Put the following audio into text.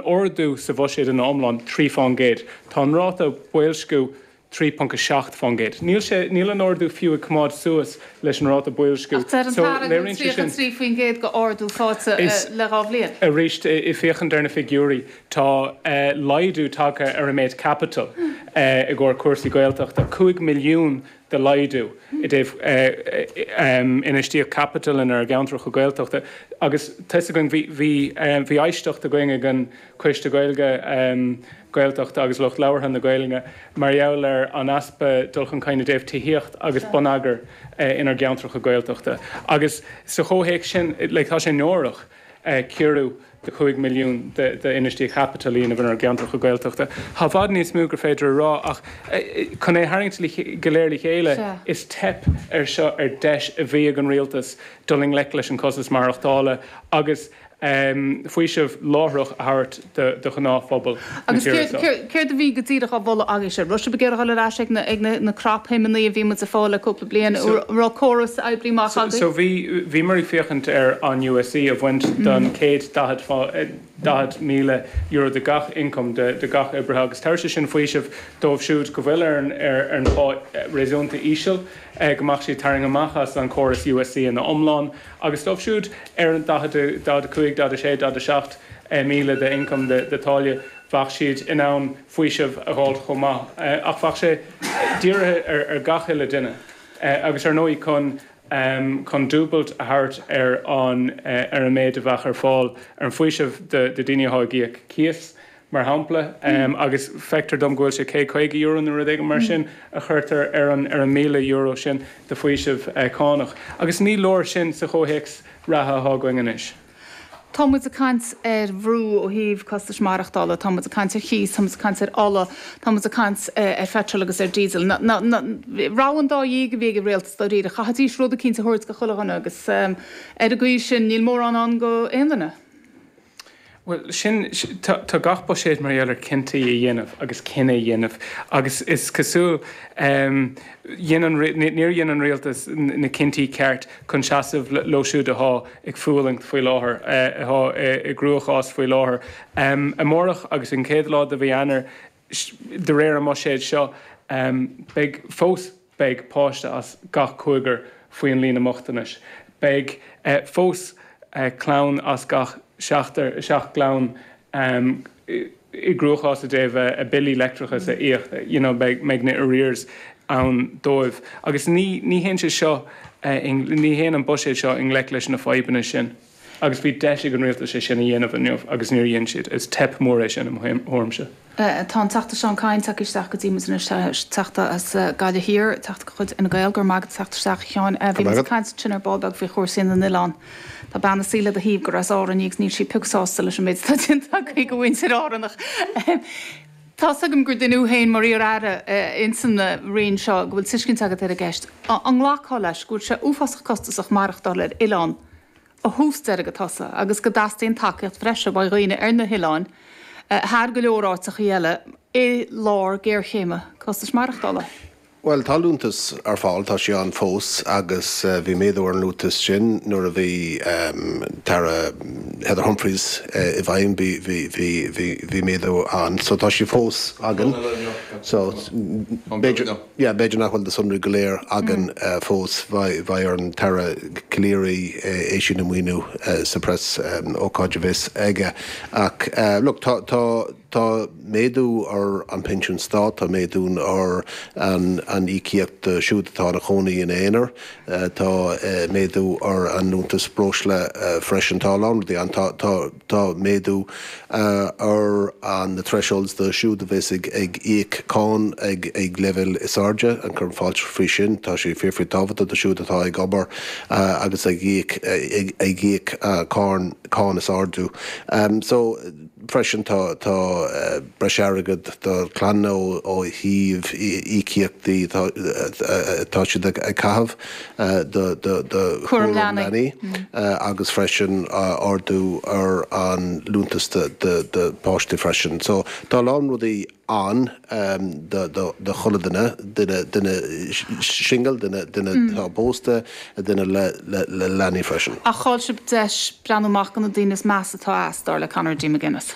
ardú sa bhuiséad ina iomlán 3%. Tá an ráta boilsciú 3.7%. Níl sé, níl an ardú fiú ag coimeád suas leis an ráta boilsciú, Ach deir an tAire go bhfuil léiríonn sé sin. 33% de ardú faighte Is, le dhá bhliain. arís, ag féachaint ar na figiúirí, tá laghdú tagtha ar an méid caipitil i gcomhair cúrsaí Gaeltachta, 5 milliún de laghdú i dtaobh infheistíocht caipitil inár gceantracha Gaeltachta agus tusa againn bhí éisteacht againn ag an Coiste Gaeilge, Gaeltachta agus Lucht Labhartha na Gaeilge mar gheall ar an easpa dul chun cinn i dtaobh tithíocht agus bonneagair inár gceantracha Gaeltachta agus sa chomhthéacs sin like tá sé náireach. ciorrú de 5 milliún d'infheistíocht chaipitil a dhéanamh inár gceantracha Gaeltachta. Tá i bhfad níos mó gur féidir a rá, ach chun é a tharraingt go léir le chéile, is teip é seo ar deis a bhí ag an Rialtas dul i ngleic leis an costas maireachtála agus faoiseamh láithreach a thabhairt do ghnáthphobal na tíre seo. Agus céard a bhí go díreach á mholadh agaibh? Sé sin ar ba cheart a dhul ar ais ag na na cnapshuimeanna a bhí muid a' fáil le cúpla bliain, an raibh córas a oibrigh maith agaibh? So bhí, bhíomar ag féachaint ar an USC a bhaint don chéad daichead, daichead míle euro de gach income de, de gach oibrithe agus tabharfadh sé sin faoiseamh dóibh siúd go bhfuil ar an, ar an phá réasúnta íseal, go mbeadh siad tarraing amach as an chóras USC ina iomlán agus dóibh siúd ar an 40, 45, 46, 47 míle de ioncam de táille bheadh siad in ann faoiseamh a dh'fháilt chomh maith. Ach bheadh sé dírithe ar gach aon duine agus ar ndóigh chun chun dúbailt a thabhairt ar an ar an méid a bheadh ar fáil ar an faoiseamh do do daoine athá ag íoc cíos. mar shampla, agus feictear dom go bhfuil sé céad caoga euro nó rud éigin mar sin a chuirtear ar an míle euro sin de faoiseamh cánach, agus ní leor sin sa chomhthéacs reatha atá againn anois. Tá muid ag caint ar bhrú ó thaobh costais maireachtála, tá muid ag caint ar chíos, tá muid ag caint ar ola, tá muid ag caint ar pheitreal agus ar díosal. Ní rogha an dá dhíogha a bhí ag an rialtas, dáiríre, caithfidís rud eicínt a thabhairt go chuile dhuine, agus ar an gcaoi sin níl mórán ann go aon duine. Bhuel, sin, tá gach buiséad mar gheall ar cinntí a dhéanamh agus cinneadh a dhéanamh agus is cosúil dhein an, níor dhein an rialtas na cinntí ceart chun seasamh leo siúd athá ag fualaingt faoi láthair, athá i gcruachás faoi láthair. Amárach agus an chéad lá de mhí Eanáir, De réir an mbuiséid seo, beidh fós beidh páiste as gach cúigear faoi an líne mbochtanais. Beidh fós clann as gach seachtar, seacht gclann, i gcruachás i dtaobh a mbillí leictreachais a íoc, you know beidh mbeidh na arrears ann dóibh. Agus ní ní théann sé seo i ní théann an buiséad seo i ngleic leis na fadhbanna sin. Agus bhí deis ag an rialtas é sin a dhéanamh inniu agus níor dhéan siad. Is teip mhór é sin, i mo thuairimse. Tá an Teachta Seán Kyne tagtha isteach go dtí muid anois, Teachta as Gaillimh Thiar, Teachta de chuid Fhine Gael. Go raibh maith agat as teacht isteach, a Sheáin. Bhí muid ag caint ansin ar ball beag faoi chúrsaí na n-oileán. Tá bean ansin le do thaobh agus as Árainn í agus níl siad pioc sásta leis an méid atá déanta agaibh do mhuintir Árann! Tá's agam gur duine tú féin mar iar-Aire insan Roinn seo, go bhfuil tuiscint agat ar an gceist. An nglacfá leis go bhfuil sé uafásach costasach maireachtáil ar oileán ó thús deireadh go tús agus go dteastaíonn tacaíocht bhreise ó dhaoine ar na hoileáin thar go leor áiteachaí eile i lár géarchéime costais maireachtála? Bhuel, tá liúntas ar fáil, tá sé ann fós agus bhí méadú ar an liúntas sin nuair a bhí an tAire Heather Humphreys i bhfeidhm, bhí méadú ann so tá sé fós againn so b'fhéidir nach bhfuil na sonraí go léir againn fós, beidh ar an tAire Calleary é sin a mhíniú sa preasócáid a bheas aige ach look tá. Tá méadú ar an Pinsean Stáit, tá méadú ar an íocaíocht do siúd atá ina chónaí in aonar, tá méadú ar an liúntas breosla freisin. Tá a lán rudaí ann. Tá tá méadú ar na thresholds do siúd a bheas ag íoc cáin ag leibhéal is airde, ag cur fáilte faoi sin. Tá sé fíor fíor tábhachtach do siúd atá ag obair agus ag íoc ag íoc cáin cáin is airde. So. Freisin tá breis airgead do clanna ó thaobh íocaíochtaí atá siad a chaitheamh do chúram leanaí agus freisin ardú ar an liúntas do páistí freisin. So tá a lán rudaí ann do chuile dhuine, duine singil, duine atá pósta, duine le leanaí freisin. Ach chaill sibh deis breathnú amach do na daoine is measa atá as, dar le Conor D. McGuinness.